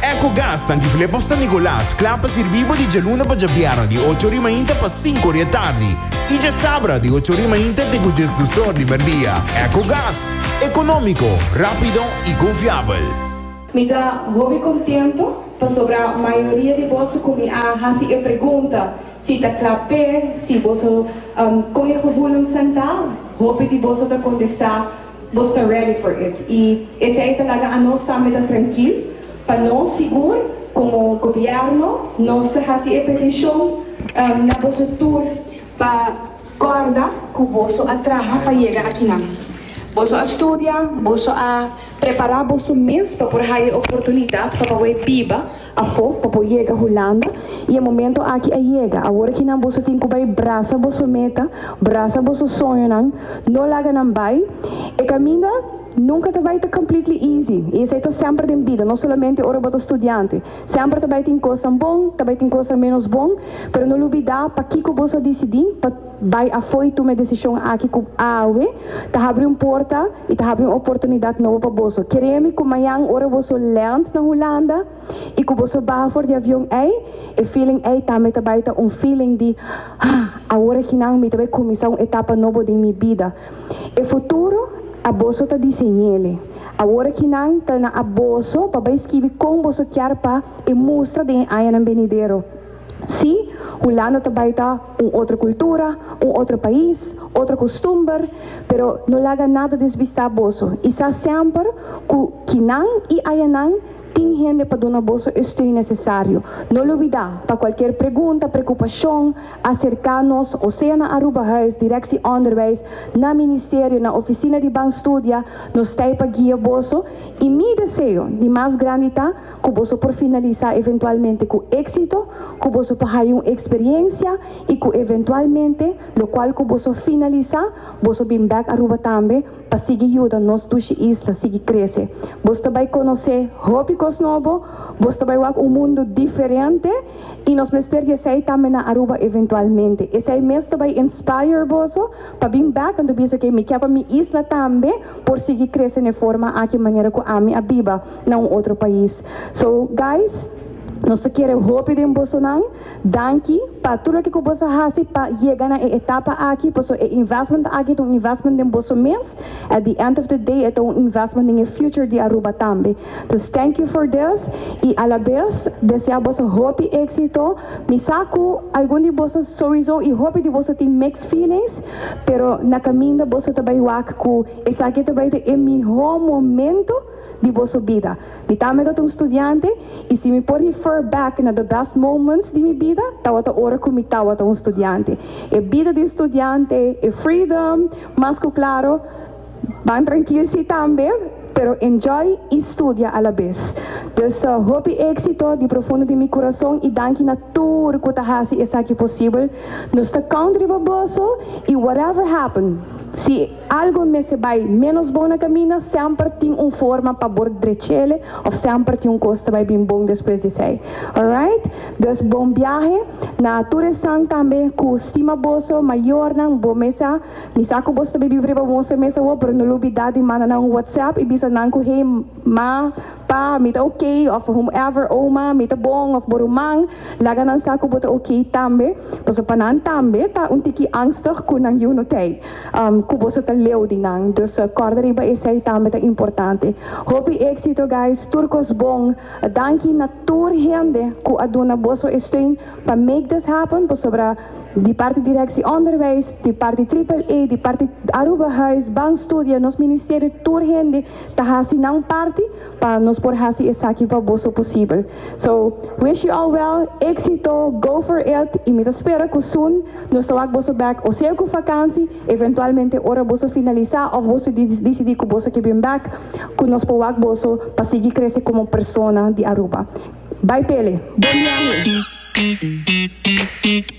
Ecogas ta Antigulé pa San Nicolas, kla pa sirbí bo di djaluna pa djabièrnè di ocho ori mainta pa sinku ori atardi i djasabra di ocho ori mainta te ku djes dusor di merdia. Ecogas, ekonómiko, rápido i konfiabel. Mi ta hopi kontentu pasobra mayoria di boso ku mi a hasi e pregunta si ta kla p'e si boso kon e gevoelens sentá, hopi di boso ta kontestá Nos ta ready for it y esey ta laga anos tambe ta trankil pa nos sigur como gobierno nos ta haci e peticion na boso tur pa corda cu boso a traha pa yega akinan. Boso a studia, boso a prepara boso mes pa por haya e oportunidad pa pawe biba Afó pa por yega Hulanda y e momento aki a yega, awor aki nan boso tin cu bay brasa boso meta, brasa boso soñonan, no laga nan bay, e caminda nunca ta bay ta completely easy y esey ta semper den bida, no solamente ora bo ta studiante, semper ta bay tin cosnan bon, ta bay tin cosnan menos bon, pero no lubida pakico boso a dicidi pa. Bai afoi tuma e desishon aki ku awe ta habri un porta i ta habri un oportunidat nobo pa boso. Kere'e mi ku mañan ora boso lènt na Hulanda i ku boso baha for di avion ei, e feeling ei tambe ta bai ta un feeling di, Haa, awor akinan mi ta bai kuminsá un etapa nobo den mi bida. E futuro a boso ta diseñ'ele. Awor akinan ta na a boso pa bai skibi kon boso kier pa e mustra den e añanan benidero. Sí, Hulanda ta bai ta. Un otro cultura, un otro pais, otro costumber, pero no laga nada desbista boso y sa semper cu kinan y ayanan tin hende pa duna boso e steun necesario. No lubida, pa cualkier pregunta, preocupacion, acerca nos o sea na Aruba Huis, Directie Onderwijs, na Ministerio, na Oficina di Ban Studia, nos t'ai pa guia boso y mi deseo di mas grandi ta, ku boso por finalisá eventualmente ku éksito, ku boso por haya un eksperiencia i ku eventualmente lokual ku boso finalisá boso bin bèk Aruba tambe pa sigui yuda nos dushi isla sigui krese. Boso ta bai konosé hopi kos nobo, boso ta bai wak un mundu diferente i nos mester di esei tambe na Aruba eventualmente. Esei mes ta bai inspire boso pa bin bèk anto bisa ke mi ke pa mi isla tambe por sigui krese n'e forma aki manera ku ami a biba. na un otro pais. So guys nos ta kere hopi den bosonan, danki pa tur loke ku bos a hasi pa yega na e etapa aki paso e investment aki ta un investment den boso mes, at the end of the day e ta un investment den e future di Aruba tambe. Dus thank you for this i a la bes desea boso hopi exito, mi sa ku algun di boso souiso i hopi di boso tin mixed feelings pero na kaminda boso ta bai wak ku esaki ta bai ta e mihó momento di boso bida. Mi tambe ta un studiante i si mi por refer back na the best moments di mi bida tabata ora ku mi tabata un studiante. E bida di un studiante, e freedom, mas ku klaro, ban trankil si tambe, pero enjoy i studia alabes. Dus hopi éksito di profundo di mi kurason i danki na tur ku ta hasi esaki posibel. Nos ta count riba boso i whatever happen, si. Algo mester bai ménos bon na kaminda, semper tin un forma pa bor drechele òf semper tin un kos ta bai bin bon despues di esei. Alright? Dus bon biahe na tur esnan tambe ku stima boso mayornan, bo mesa, mi sa ku boso ta bibí riba un moster mes awor pero no lo bidá di manda nan un whatsapp i bisa nan ku hey ma, Pa, mi ta ok, of whomever, Oma, mi ta bon, of bo ruman, laga nan sa ku bo ta ok tambe, pasobra pa nan tambe ta un tiki angstig ku nan yu no tei ku boso ta leu di nan. Dus kòrda riba esei tambe ta importante. Hopi éksito guys, tur kos bon. Danki na tur hende ku a duna boso e steun pa make this happen, pasobra di parti Direksie Onderwijs, di parti Triple A, di parti Aruba Huis, Bank Studia, nos ministerio, tur hende, ta hasi nan parti pa nos por hasi esaki pa boso posibel. So, wish you all well, exito, go for it y mi ta spera cu soon nos ta wak boso back o sea cu vakansi, eventualmente ora boso finalisa of boso dicidi cu boso ke bin back, cu nos por wak boso pa sigui crece como persona di Aruba. Bay Pele! Bon biahe!